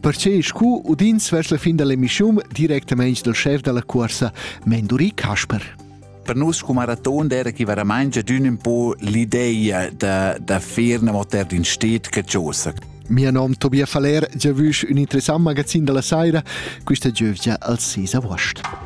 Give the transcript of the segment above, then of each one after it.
Perche scu udins vers la fin dall'emissiun directamaing dal chef dalla cuorsa Menduri Kasper. Per nus come maraton era che veramente d'un un po l'idea da, da faire una motor in stet che giosa. Mio nome Tobias Faller, giavüsch un interessant magazin della saira, questa giövgia al 6 agost.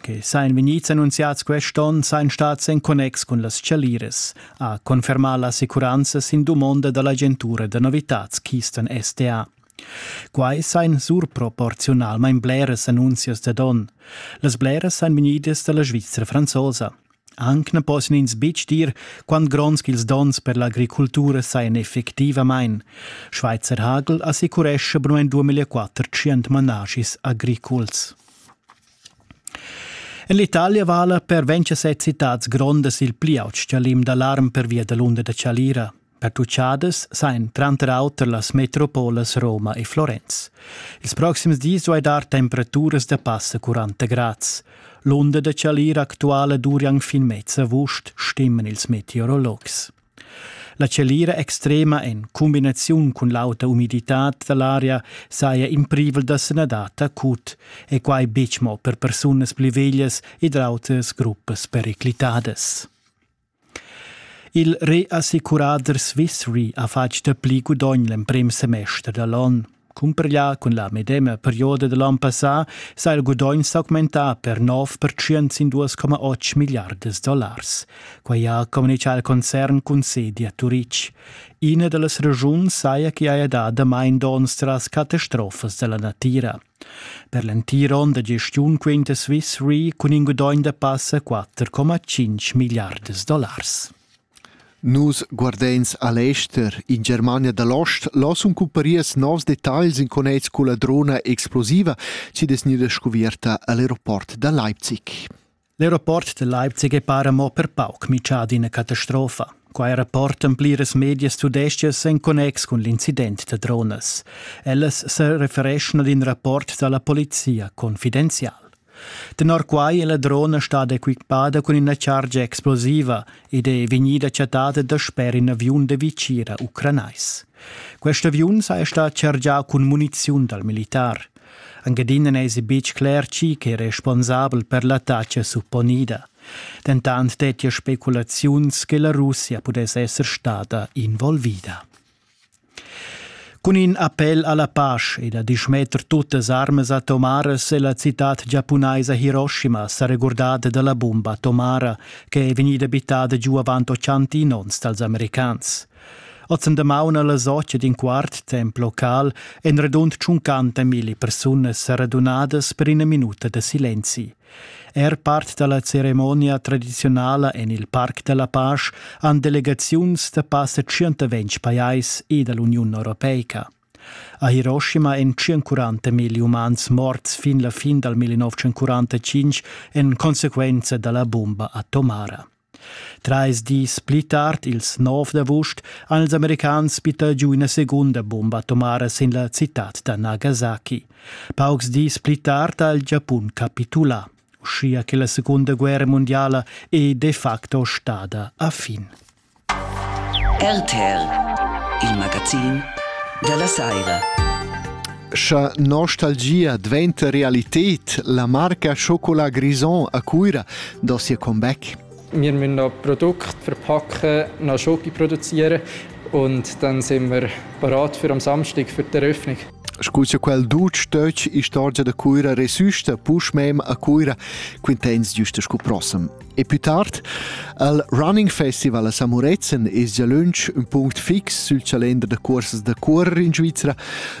che sajan vegnids annunziads quest onn sajan stads en connex cun las chaliras, ha confermà l'assicuranza sin dumonda da l'agentura da novitads Keystone SDA. Quai sajan surproporziunalmain bleras annunzias da don. Las bleras sajan vegnidas da la Svizra franzosa. Anc na possian ins betg dir quant gronds ch'ils donns per l'agricultura sajan effectivamain. Schweizer Hagel assicurescha per 2004 tschient manaschis agriculs. En l'Italia vala per 27 citads grondas il pli aut stgalim d'alarm pervia da l'unda da Chalira. Pertucciadas sain tranter auter las metropolas Roma e Florenz. Ils proxims dis duai dar temperaturas da passa 40 grads. L'unda da Chalira actuala durian fin mezza august, stimmen ils meteorologs. La tschelira extrema en cumbinaziun cun l'auta umiditad da l'aria saja in privel da sanadad acut e quai betg mo per persunas pli veglias ed autras gruppas periclitadas. Il reassicurader Swiss Re ha fatg dapli gudogn l'emprim semester da l'onn. Cumprglià cun la medema perioda da l'on passà s'ha il gudogn s'augmentà per 9% sin 2,8 milliardas dollars. Quai ha communitgà il concern cun sedi a Turitg. Ina da las ragiuns saja ch'i haja dà damain donns tras catastrofas da la natira. Per l'entir onn da gestiun quinta Swiss Re cun in gudogn da passa 4,5 milliardas dollars. Nus guardeins a l'ester. In Germania da l'ost là sun cumparias novs detagls in connex culla drona explosiva chi'd es gnüda scuvierta a l'aeroport da Leipzig. L'aeroport da Leipzig è para mo per pauc mitschà d'ina catastrofa. Quai rapportan pliras medias tudestgas en connex cun l'incident da dronas. Ellas se refereschan ad in rapport da la polizia confidenzial. Tenor quai è la drona stada equippada cun ina chargia explosiva ed è vegnida chattada dasper in aviun da vicira ucranais. Quest aviun saja stà chargià cun muniziun dal militar. Anc adina n'èsi betg cler chi che è responsabel per l'attacca supponida. Dentant dettia speculaziuns che la Russia pudess esser stada involvida. Cun in appel alla pasch e da dismetter tuttas armas atomaras è la citad giapunaisa Hiroshima sa regurdada dalla bumba atomara che è vegnida bittada giu avant ochantin onns dals americans. Oz en damaun alla socia d'in quart temp local en radund tschuncanta milli persunas sa radunadas per ina minuta da silenzi. Er part dalla ceremonia tradiziunala en il Parc della Pasch han delegaziuns da passa 120 pajais e dall'Uniun europeica. A Hiroshima èn 140 mil umans morts fin la fin dal 1945 en conseguenza dalla bomba atomara. Trais dis pli tard, ils nov d'avust, han ils americans bittà giu ina segunda bumba atomara sin la citad da Nagasaki. Paucs dis pli tard ha il Giapun capitulà, uschia che la Segunda guerra mondiala è de facto stada a fin. RTL, il magazin della Saira. Scha nostalgia dvainta realited, la marca Chocolat Grison a Cuira do sia comeback. Wir müssen noch Produkte verpacken, noch Schoki produzieren und dann sind wir bereit für am Samstag für die Eröffnung. Scusa quel dutg töch istorgia da Cuira resusta push mem a Cuira quintens giusta scu prossem. E pü tard al Running Festival a Samurezen es già lönch ün punct fix sül chalender da cuorsas da cuorrer in Svizra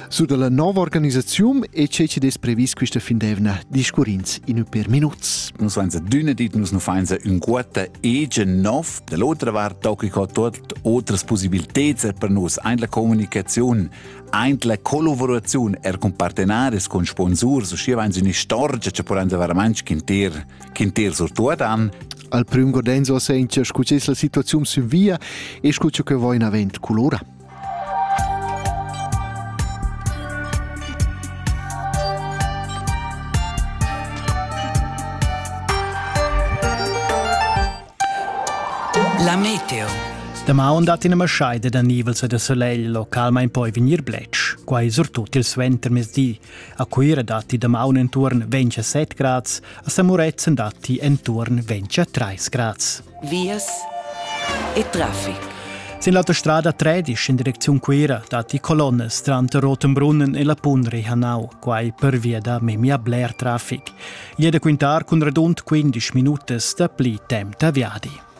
su da la nova organisaziun e che chi'd es previs quista fin d'eivna discurrins in ün per minuts. Nus vains adüna dit, nus nu fains ün quota egen nov. Da l'otra vart tocca co tuot otras possibilteds er per nus ein la comunicaziun, ein la collaboraziun er con partenaris, con sponsurs, uscia vains üna storgia che porans veramente quintir Quin til surtuodan? Al prüm godenzo sentia scu es la situaziun sün via e scu che vo in avant culora. La meteo. Damaun dat ina maschaida da nivel da solegl localmain poi vegnir bletsch, quai surtut il suentermezdi. A Cuira datti damaun enturn 27 grads, a Samuretzen datti enturn 23 grads. Vias e traffic. Sin l'autostrada 13 in direcziun Cuira datti colonnes tranter Rotenbrunnen e la Punri Hanau, quai per via da memia bler traffic. Gli è da quintar cun radund 15 minutas da pli temp da viadi.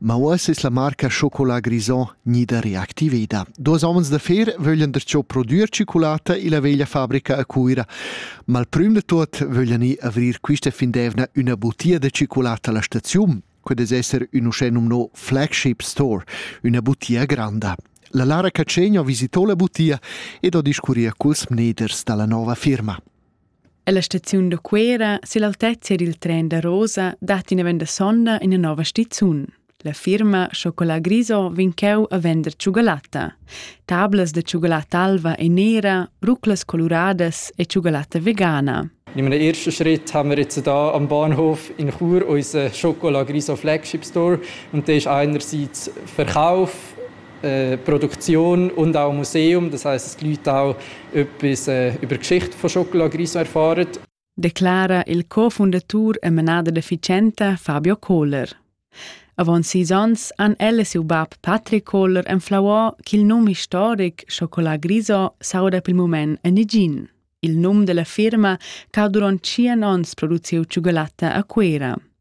Ma uoss es la marca Chocolat Grison gnida reactiveda. Duos homens d'affer vöglian der cho prodüer cicolata illa veglia fabrica a Cuira, ma il prüm da tuot vöglian i avrir quista fin d'eivna üna butia da cicolata alla staziun. Quel es esser ün uschè nomnò flagship store, üna butia granda. La Lara Cacegno visitò la butia ed ho discurri culs mneders da la nova firma. Ella staziun da Cuera sill'altezia dil tren da Rosa dat ina venda sonda ina nova stizun. La firma Chocolat Griso vegn cheu a vender tschugalatta. Tablas da tschugalatta alva e nera, ruclas coluradas e tschugalatta vegana. In meinen ersten Schritt haben wir jetzt da am Bahnhof in Chur unseren Chocolat Griso Flagship Store und der ist einerseits Verkauf Produktion und auch Museum, das heißt, die Leute auch etwas über Geschichte von Chocolat Griso erfahren. declara il co-fundatur e menada deficienta Fabio Kohler. Avant sis onns han elle siu bab Patrick Kohler enflauà ch'il num historic Chocolat Griso s'auda pel moment en negin. Il num della firma ch'ha durant tschien onns produciu tschugolatta a Cuera.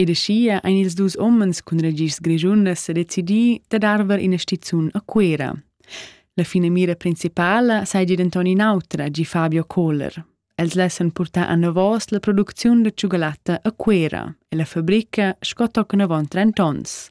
Ed aschia ein ils dus umens cun ragischs grischundas sedecidi dad arver ina stizun a Cuera. La finamira principala seigi denton in'autra, gi Fabio Kohler. Els lessan purtar anavos la producziun da tschugalatta a Cuera e la fabrica sco tochen avon trent'onns.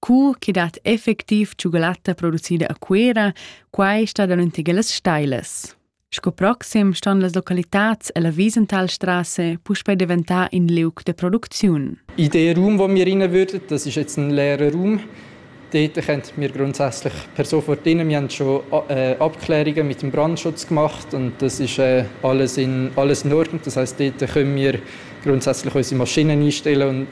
Cur chi dat effectiv tschugalatta producida a Cuera, quai sta danunder las stailas. Sco proxim ston las localitats e la Wiesentalstrasse puspei diventar in liug de producziun. Idee Raum, wo wir rein würden, das ist jetzt ein leerer Raum. Dort könnt wir grundsätzlich per sofort rein. Wir haben schon äh, Abklärungen mit dem Brandschutz gemacht und das ist äh, alles, in, alles in Ordnung. Das heißt, dort können wir grundsätzlich unsere Maschinen einstellen und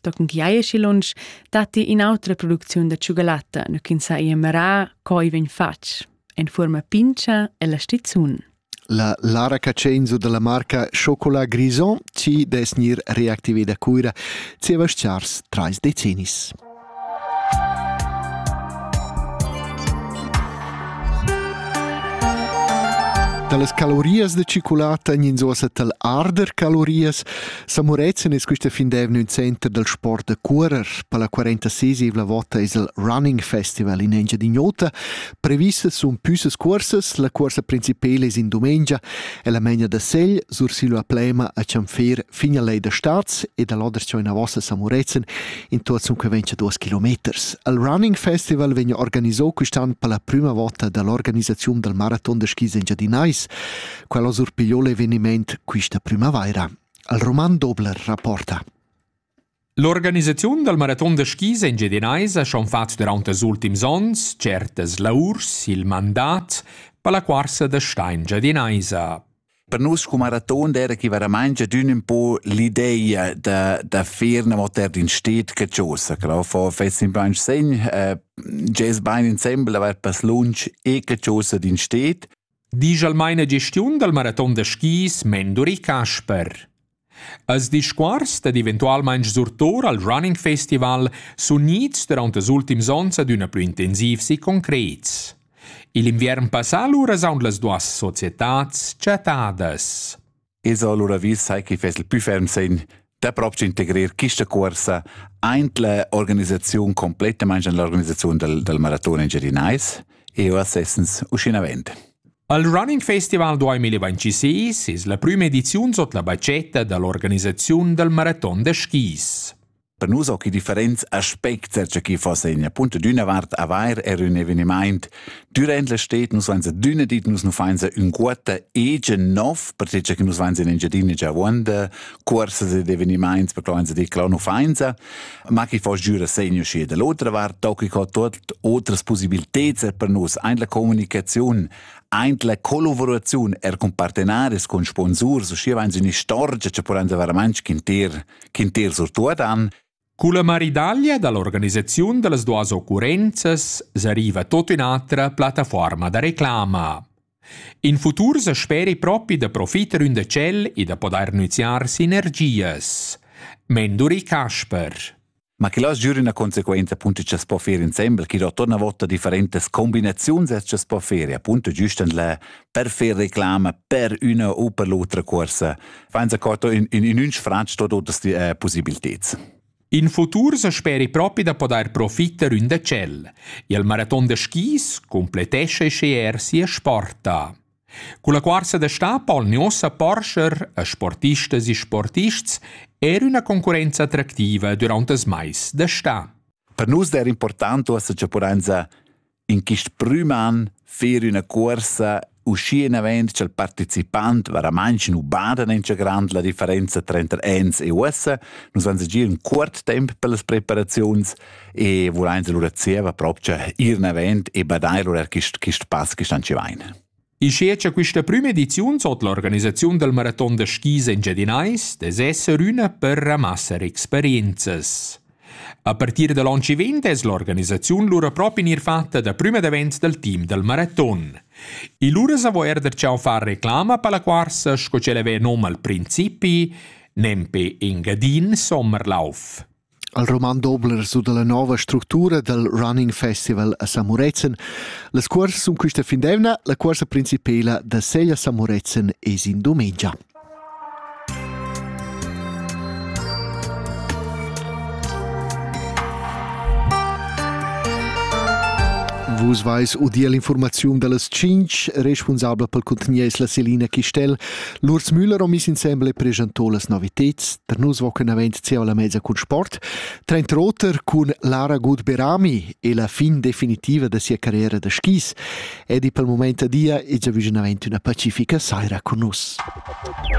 Da cun chi haja schi lunsch datti in'autra producziun da tschugalatta, nu ch'ins ha emerà co i vegn fatg, en fuorma pincha e la stizun. La Lara Cacenzo dalla marca Chocolat Grison ci des nir reactive da Cuira zieva schars trais decennis. Talas calorias de ciculata gn'inzosa tal arder calorias San Murezzan es quista fin d'eivna ün center dal sport da curer. Per la 46esivla vota es il Running Festival in Engiadin'Ota. Previssas sun püssas cuorsas, la cuorsa principela es in dumengia e la megna da segl sursillo a Plema a Cianfer fin a lei da Starz ed a l'odercio in avossa a San Murezzan in tuozzun che ventscha duos kilometers. Il Running Festival vegna organiso quist'an per la prüma vota da l'organisaziun dal maraton da skis engiadinais. Quel ha surpigliò l'evenimaint quista prümavaira. Il roman Dobler rapporta L'organisaziun dal maraton da skis engiadinaisa ha fatg durant ils ultims ons certas laurs il mandat per la quarsa da sta engiadinaisa. Per nus cum maraton era chi veramaing adün ün po l'ideia da, da fer una moter in stet che chosa, crau fo fess in plain segn, eh, gest bain insembel aver pass lunch e che chosa d'in stet, Disch al maina gestiun dal maraton da skis Menduri Casper. Als discuors dad eventualmaing surtour al Running Festival sun gnits durant els ultims ons adüna plü intensivs e concrets. Il inviern passà lura s'haun las duas societats chattadas. Es allura vis sai chi fess il pü ferm segn da proprio integrir quista cuorsa aint la organisaziun complettamaing in l'organisaziun dal, dal maraton engiadinais e uoss essens uscinavent. Al Running Festival 2026 es la prüma ediziun sot la bacetta da l'organisaziun dal maraton da skis. Per nus occhi differents aspects che chi fosse in punto d'una vart avair er un eveniment durant la stet nus vainsa d'una dit nus nu fainsa un quota egen nov per che che nus vainsa in Engiadina già vuonda cuorsas ed eveniments per che vainsa dir che nu fainsa ma chi fosse giura segno schi da l'otra vart tocchi co tot otras possibiliteds per nus ein la comunicazione ein la collaborazione er con partenaris con sponsors o schi vainsa un'istorgia che può andare veramente inter quintir surtuodan. Culla maridaglia dall'organisaziun dallas duas occurrenzas s'arriva tot ün'atra plattaforma da reclama. In futur se speri propi da profiter ün de cel e da podair nüziar sinergias. Menduri Kasper. Ma che las giur una conseguenza appunto che si può fare insieme, che da torna volta differentes combinazioni che si può fare, appunto giustend la per far reclama per üna u per l'otra cuorsa. Fain s'accorto in, in, in un sfratg totas die äh, possibiliteds. In futur se speri propi da podair profitter ün decel. Il maraton de skis completesce sceer sia sporta. Con la cuorsa de sta polni ossa porscher a sportistas e sportists er una concorrenza attractiva durante das mais de sta. Per nus der importante ossa che porenza In quist prüm an fer üna cuorsa uschinavant cha'l partecipant varamantsch nu bada nancha grand la differenza tranter ans e uossa. Nus vains agir ün cuort temp pellas preparaziuns e vulains alura zieva propcha ir navant e badair lura quist quist pass chi stanchi vain. Ischia cha quista prüma ediziun sot l'organisaziun dal maraton da skis engiadinais dess esser üna per ramassar experienzas. A partir da l'on chi vegn es l'organisaziun lura propi gnir fatta da prüma davent dal team dal maraton. E lura s'avo eir darcheu far reclama per la cuorsa sco ch'ella ven nom al principi, nempe Engadin Sommerlauf. El roman dobla resu dalla nova structura dal Running Festival a Samurezen. Las cuorsas sun quista fin d'eivna. La cuorsa principela da Seglia Samurezen es in dumengia. Vus vais udir l'informaziun dallas 5, responsabla pel contenier es la Selina Chistel. Lurs Müller ho miss insembel e preschantò las noviteds. Per nus vocan avent zieva la mezza cun sport, trenta oter cun Lara Gut-Berami e la fin definitiva da sia carriera da skis. Edi pel moment a dia e giavüschen avent üna pacifica saira cun nus.